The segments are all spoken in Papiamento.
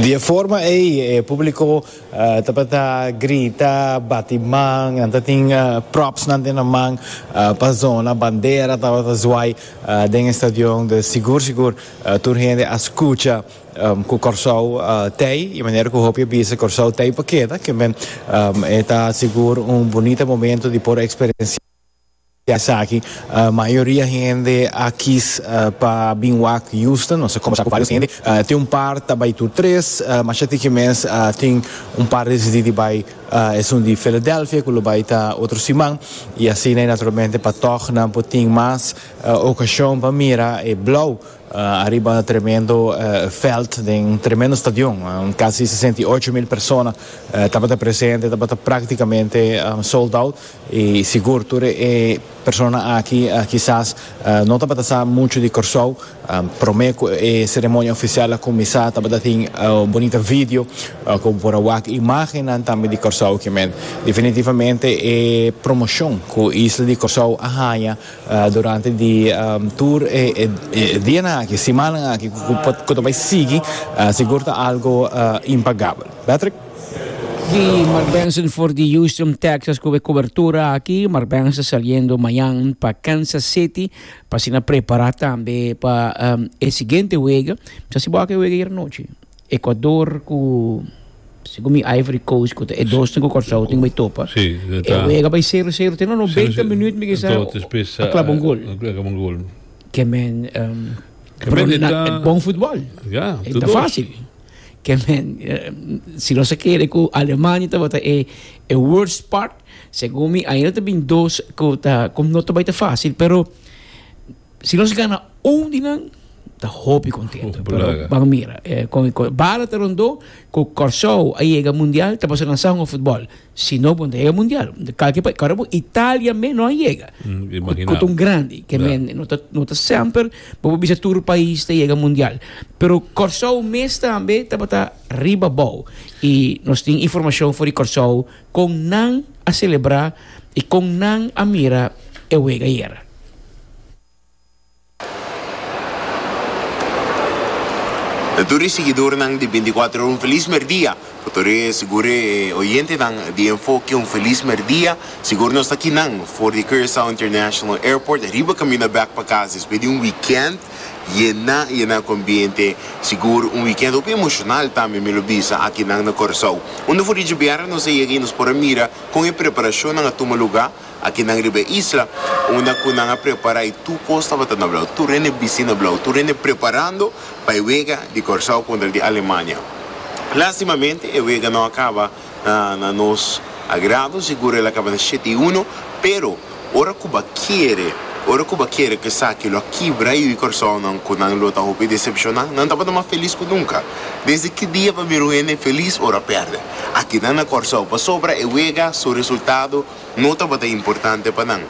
Di e forma ei e públiko tabata grita, bati man, nan ta tin propsnan den nan man pa zona, bandera tabata zwaai den e stadion, dus sigur sigur tur hende a skucha ku Kòrsou tei i manera ku hopi a bisa Kòrsou tei pa keda, kimen e ta sigur un bunita momentu di por eksperensiá. Esaki mayoria hende a kies pa bin wak Houston. Nos a kombersá ku vários hende. Tin un par ta bai tur tres. Masha tin ke mes tin un par desidí di bai esun di Philadelphia ku lo bai ta otro siman. I asina i naturalmente pa tòg nan por tin mas okashon pa mira e Blou ariba e tremendo vèlt den un tremendo stadion. Kasi sesenta i ocho mil persona tabata presente. Tabata práktikamente sold out. I sigur tur e persona aki kisas no tabata sa muchu di Kòrsou. Promé ku e seremonia ofisial a kuminsá tabata tin un bonita video ku bo por a wak imágennan tambe di Kòrsou kimen. Definitivamente e promoshon ku isla di Kòrsou a haña durante di tur e dianan aki, simannan aki ku ta bai sigui sigur ta algu impagabel. Patrick. Di Mark Benson for di Houston, Texas cu e cobertura aki. Mark Benson saliendo mañan pa Kansas City pa asina prepara tambe pa um, e siguiente wega. Misa si bo aki e wega ayer anochi. Ecuador cu, segun mi Ivory Coast cu ta e dosnan cu Curaçao tin bay topa. Sí, e ta. E wega bay cero cero te no no beinti minuut mi kisa Entonces despues a claba un gol. a claba un gol. Ke men um, Ke men e Bruna ta- e bon futbol. Ja, E ta ta dos. facil. Ke men, si nos a kere ku Alemania tabata e worst part, segun mi ainda ta bin dos ku ta ku no ta bai ta fásil, pero si nos gana un di nan ta hopi kontentu. Pero ban mira, bala ta rondó ku Kòrsou a yega mundial ta pasa nan sahun òf futbòl. Si no bo dega mundial. Kalke pa kora bo Italia me no a yega. Kot un grandi ke men no ta no ta semper bo bo bisa tur pais ta yega mundial. Pero Kòrsou mes tambe tabata riba bou i nos tin informashon for di Kòrsou kon nan a selebrá i kon nan a mira e wega ayera. E tur e siguidornan di binti kuater ora un felis merdia pa tur e segure e oyentenan di Enfoke un felis merdia sigur nos ta kinan for di Curaçao International Airport riba kaminda bek pa kas despues di un weekend yena yena ku ambiente sigur un weekend hopi emoshonal tambe mi lo bisa akinan na Curaçao unda for di dje bièrnè nos a yega i nos por a mira kon e preparashonnan a tuma lugá. Akinan riba e isla, unda ku nan a prepará i tur kos tabata na blau, tur hende bistí na blau, tur hende preparando pa e wega di Kòrsou kontra di Alemania. Lástimamente, e wega no a kaba na na nos agrado, sigur el a kaba na shete i uno, pero ora ku ba kere, ora ku ba kere ku esaki lo a kibra yu di Kòrsounan ku nan lo ta hopi desepshoná, nan tabata mas felis ku nunka. Desde ki dia pa mira un hende felis ora a pèrdè? Akinan na Kòrsou, pasobra e wega su resultado No tabata importante pa nan,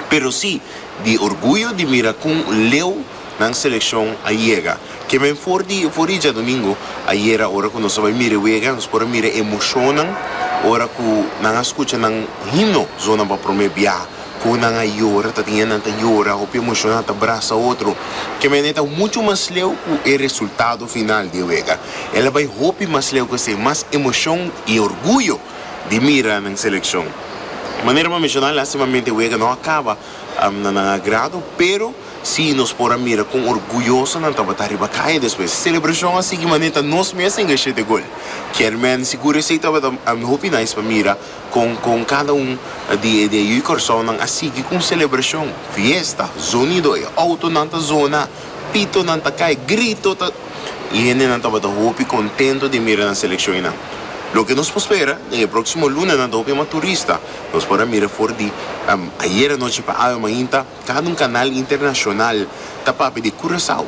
pero si di orguyo di mira con leu nan seleccion a yega. Kiemen for di eufori djadomingo ayera ora cu nos a bay mira e wega, nos por a mira e emocionnan ora cu nan a scucha nan himno zonan pa prome bia, con nan a yora, ta tin e nan ta yora, hopi emociona ta brasa otro. Kiemen e ta mucho mas leu cu e resultado final di e wega. El a bay hopi mas leu cu esey, mas emocion y orguyo. di mira nan seleccion. Manera m'a menciona lastimamente wega no a caba na nan agrado pero si nos por a mira con orguyoso nan tabata riba caña despues e celebracion a sigui mane ta nos mes a inga shete gol. Chairman sigur esey tabata hopi nice pa mira con con cada un di e di e yu Curacao nan a sigui con celebracion, fiesta, zonido, e autonan ta zona. Pitonan ta kai, grito ta. I hendenan tabata hopi kontento di mira nan selekshonnan. Loke nos por spera, den e próksimo lunanan ta hopi mas turista. Nos por a mira for di Ayera anochi pa awe mainta, kada un kanal internashonal ta papia di Kurasou,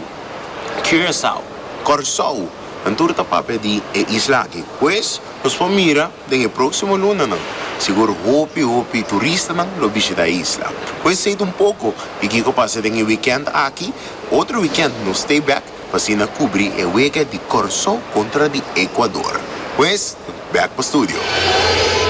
Curaçao, Kòrsou, nan tur ta papia di e isla aki. Pues, nos por mira. Den e próksimo lunanan, sigur hopi hopi turistanan lo bishita e isla. Cu esei ta un poco di kico pasa den e weekend aki, otro weekend nos stay back pa asina cubri e wega di Corsó contra di Ecuador. Pues, back pa studio.